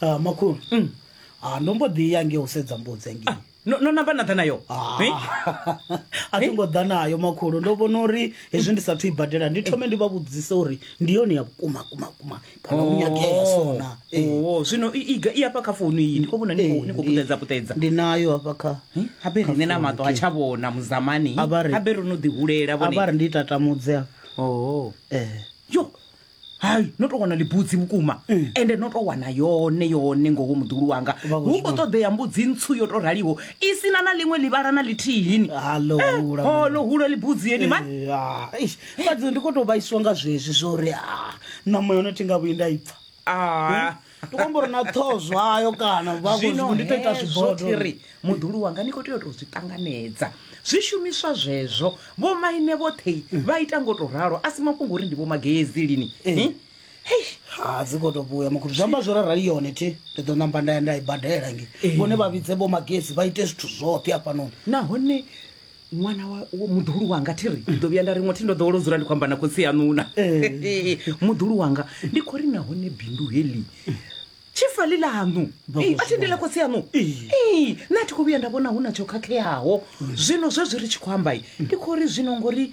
Ah, makhulu Mm. Ah, ndo mbo ḓi ya nge u sedza mbudzi nge no no namba na ḓa nayo Ah. Eh? a thi ngo ḓa nayo makhulu ndo vhona uri hezwi ndi sathu i badela ndi thome ndi vha vhudzise uri ndi yone ya vhukuma kuma kuma kana u nyagea sona Eh, Oh, oh, zwino i- iga i afha kha founu iyi ndi khou vhona ni khou- eh, ni khou ndi- puṱedza puṱedza ndi nayo hafha kha Eh, habe riṋe na maṱo ha tsha vhona muzamani A vha ri- habe ro no ḓihulela a vha vhone ri ndi tatamudze hafha Oh. eh yo hai no to wana libudzi vhukuma ende no to wana yone yone ngoho muḓulu wanga Vha khou hu khou zwi ṱoḓea mbudzi ntswu yo to raliho i sina na ḽiṅwe ḽivhala na ḽithihini Hallo, hula, man. holo hulo libudzi yeni mani Ya, eish, fhadzi ndi khou tou vhaiswa nga zwezwi zwo uri ah, ṋama yone thi nga vhuyi nda i pfa Ah, ndi khou amba uri na ṱhoho zwayo kana vha zwino khou ndi tou ita hezwo zwibodo thiri muḓulu wanga ni khou tea u tou zwi ṱanganedza zwishumiswa zwezwo vho maine vhoṱhe vha ita ngo tou ralo a si mafhungo uri ndi vho magezi lini Eh? Hei, ha dzi khou tou vhuya makhulu zwi amba zwo rarali yone thi ndi ḓo namba nda ya nda i badela nge vhone vha vhidze vho magezi vha ite zwithu zwoṱhe hafhanoni nahone ṅwana wa wa- muḓuhulu wanga thi ri ndi ḓo vhuya nda ri ṅwathi ndo ḓowela u dzula ndi khou amba na khotsi yaṋuna muḓuhulu wanga ndi khou ri nahone bindu heḽi tshifali ḽaṋu Ee, a thi ndi ḽa khotsi yaṋu Ee, nṋe a thi khou vhuya nda vhona hu na tsho khakheaho zwino zwezwi ri tshi khou ambai ndi khou ri zwino ngori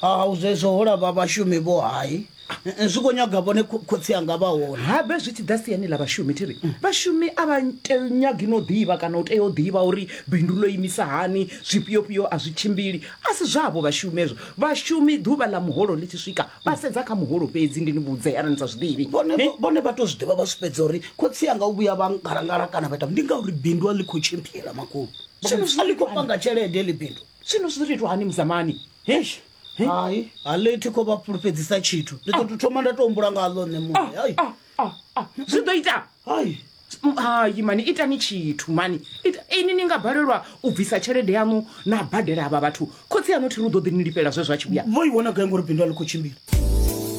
ha u zwezwo ho lava vhashumi vho hai zwi khou nyaga vhone kho- khotsi anga vha hone habe zwi tshi ḓa siani ḽa vhashumi thi ri vhashumi a vha te- nyagi no ḓivha kana u tea u ḓivha uri bindu ḽo imisa hani zwifhiofhio a zwi tshimbili a si zwavho vhashumi ezwo vhashumi ḓuvha ḽa muholo ḽi tshi swika vha sedza kha muholo fhedzi ndi ni vhudze arali ni sa zwi ḓivhi vhone Ne? vhone vha to zwi ḓivha vha zwi fhedza uri khotsi anga u vhuya vha ngalangala kana vha ita ndi ngauri bindu a ḽi khou tshimbila makhulu Vha khou a ḽi khou panga tshelede ḽi bindu Zwino zwi ḓo tou itwa hani muzamani? Eish. He? Hai, a ḽi thi khou vha fhulufhedzisa tshithu. Ndi ḓo tou thoma nda tou humbula nga ḽo nṋe muṋe. Hai. Ah, ah, ah. Zwi ḓo ita. Hai. Mm, Hai mani itani tshithu mani. Ita ini ni nga balelwa u bvisa tshelede yanu na badela avha vhathu. Khotsi aṋu thi ri u ḓo ḓi ni lifhela zwe zwa tshi vhuya. Vho i wana gai ngori bindu a ḽi khou tshimbila?